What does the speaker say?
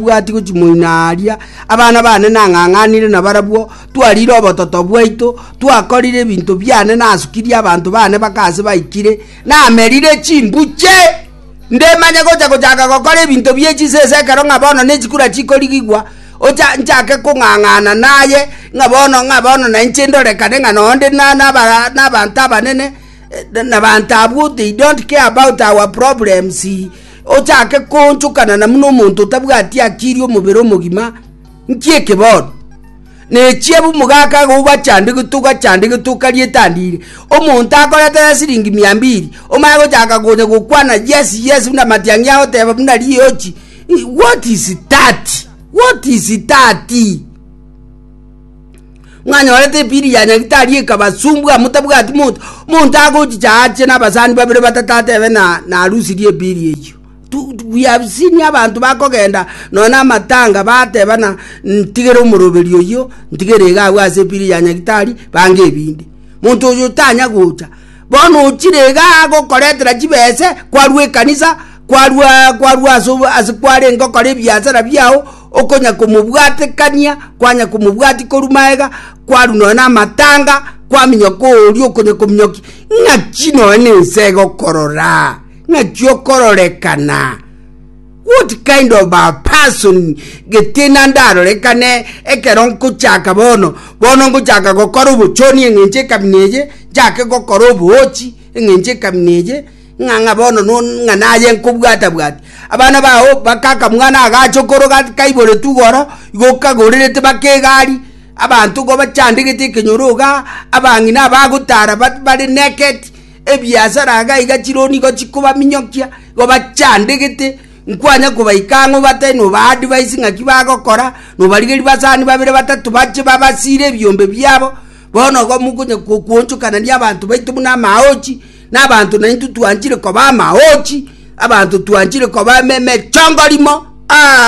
Tibwati gochimoina aaria, abana bane nang'ang'anire nabarabwo, twarire obototo bwaito, twakorire ebinto biane, nasukirie abanto bane baka ase baikire, namerire chimbuche. Ndemanye gocha gochaka gokora ebinto bie chisese ekero ng'a bono nechikura chikorigigwa, ocha nchake kong'ang'ana naye ng'a bono ng'a bono nainche ndorekane ng'a noo nde na- naba nabanto abanene, eh, nabanto abwo they don't care about our problems. Ochake koonchokana na buna omonto otabwati akirie omobere omogima nki eke bono, na echiabu omogaka agoba chande getoga chande getoka rietandire, omonto akorete aya siringi mia mbiri, omanye gochaka konya gokwana yes yes buna matiang'i agoteba buna riochi, what is that? what is that? Mwanyorete ebiri ya nyagitari ekabasumbwa mutabwati monto. Monto agochicha ache n'abasani babere batato atebe na narusirie ebiri eyio. Tu- tu- We have seen abantu bakogenda nonya n'amatanga bateba na ntigere omoroberi oyio ntigere iga abwo ase ebiri ya nyagitari bange ebindi. Monto oyo tanya gocha. Bono ochire iga agokoretera chibese kwarwa ekanisa kwarwa kwarwa ase obo- ase kwarenge okora ebiasara biao Okonyakomobwatekania kwanyakomobwatia korwa magega, kwarwa nonya namatanga, kwaminyoka oria okonyakominyoki, ng'aki nonya nense egokorora, ng'aki okororekana. What kind of a person gete nande arorekane ekero nkochaka bono bono nkochaka gokora obochoni eng'encho ekamina eye, nchake gokora oboochi eng'encho ekamina eye, Ng'a ng'a bono ng'a naye nkobwata-bwatia. Abana bao bakaka mwana agacha okoroga kaiboretwe igoro, igo kagorerete baka egari, abanto igo bachandegete ekenyoro iga, abang'ina abagotara bare naked, ebiasara iga iga chironi igo chikobaminyokia, igo bachandegete, nkwanya kobaika ang'o obatebie noba advise ng'aki bagokora, nobarigeria basani babere batato bache babasire ebiombe biabo, bono igo mokonya gokuonchokanania abanto baito buna amaochi. Nabaanto naintwe twanchire koba amaochi, abanto twanchire koba emechongorimo.